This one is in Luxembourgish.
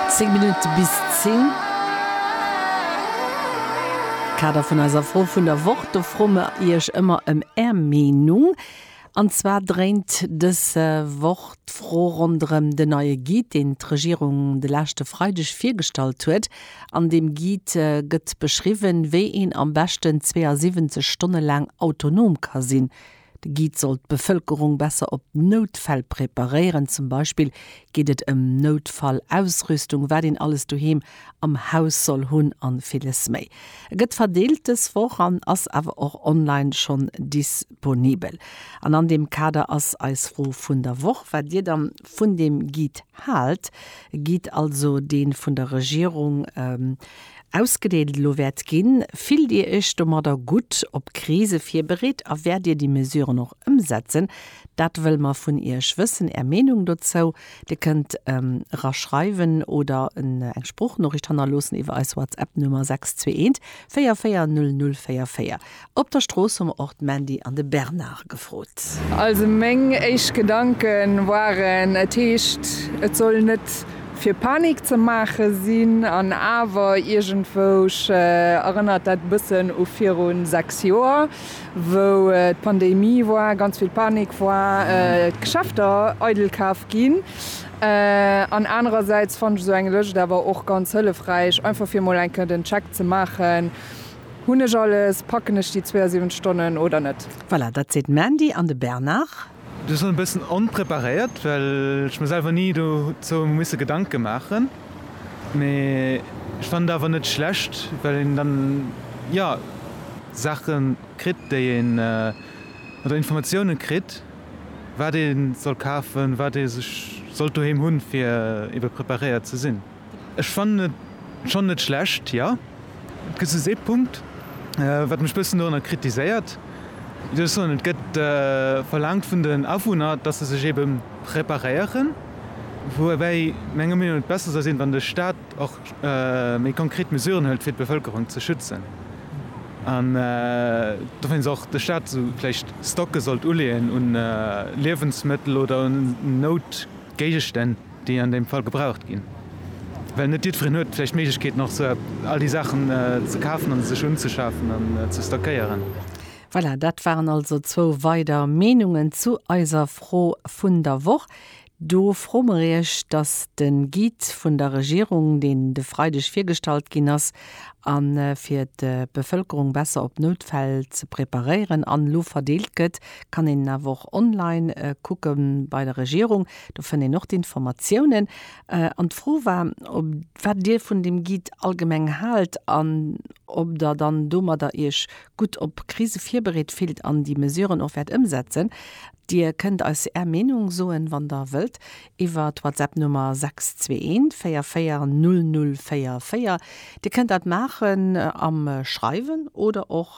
Zéng Minutte bis zéng. Kader vun eiser Fro vun der Woch, do froe mer Iech ëmmer ëm Är Meenung. An zwar dréint dës Woch d'Fro ronderëm den neie Guide, deen d'Regierung de leschte Freideg virgestallt huet. An deem Guide gëtt beschriwwen, wéi een am beschten 72 Stonne laang autonom ka sinn. De Guide soll d'Bevëlkerung besser op Noutfäll preparéieren. Zum Beispill geet et ëm Noutfall-Ausrüstung, wat een alles doheem am Haus soll hunn a villes méi. E gëtt verdeelt dës Woch an ass awer och online schonn disponibel. An an deem Kader ass eis Fro vun der Woch, wat Dir dann vun deem Guide haalt. E Guide also, dee vun der Regierung. Ausgedeelt elo wäert ginn. Fillt Dir Iech domadder gutt, op Krise virbereet a wäert Dir déi Mesuren och ëmsetzen? Dat wëlle mer vun Iech wëssen, Är Meenung dozou. Dir kënnt era schreiwen oder eng Sproochnoriicht hannerloossen iwwer eis WhatsApp-Nummer 621 44 00 44. Op der Strooss hu mer och d'Mandy an de Bernard gefrot. Also meng éischt Gedanke waren, et heescht, et soll net fir Panik ze maache sinn, an awer iergendwousch erënnert dat e bëssen u viru sechs Joer, wou d'Pandemie war, ganz vill Panik war, d'Geschäfter eidel kaf ginn. An anerersäits fannen ech esou eng Lëscht awer och ganz hëllefräich, einfach fir emol eng Kéier den Check ze maachen, Hunn ech alles? Packen ech déi 72 Stonnen oder net? Voilà, dat seet d'Mandy an de Bernard. Ech soen e bëssen onpreparéiert, well ech mir selwer ni dozou misse Gedanke maachen. Mee ech fannen et awer net schlecht, well een dann, jo, Saache kritt, déi een, oder Informatiounen kritt, wat ee soll kafen, wat ee sech sollt doheem hunn, fir ebe preparéiert ze sinn. Ech fannen et schon net schlecht. Jo et gëtt soss ee Punkt wat mech bëssen dorunner kritiséiert, wéi soll ech soen, et gëtt verlaangt vun den Awunner, dass se sech ebe preparéieren, woubäi menger Meenung et besser soll sinn, wann de Staat och méi konkret Mesuren hëlt fir d'Bevëlkerung ze schützen an dowéinst och de Staat esou vläicht Stocke sollt uleeën un Liewensmëttel oder un Noutgéigestänn. déi an deem Fall gebraucht ginn, well net jiddwereen huet vläicht d'Méiglechkeet nach esou all déi Saachen ze kafen an sech unzeschafen an ze stockéieren. Voilà, dat waren also zwou weider Meenungen zu eiser Fro vun der Woch. Do froe mer Iech, dass de Guide vun der Regierung, deen de Freideg virgestallt ginn ass, a fir d'Bevëlkerung besser op Noutfäll ze preparéieren an elo verdeelt gëtt, kann een en awer och online kucke bei der Regierung. Do fënnt een och d'Informatiounen. An d'Fro war, ob wat Dir vun deem Guide allgemeng haalt an ob Der dann domadder Iech gutt op Krise virbereet fillt an déi Mesuren och wäert ëmsetzen. Dir kënnt eis Är Meenung soen, wann Der wëllt, iwwer d'Whatsapp-Nummer 621 44 004. Dir kënnt dat maachen am Schreiwen oder och.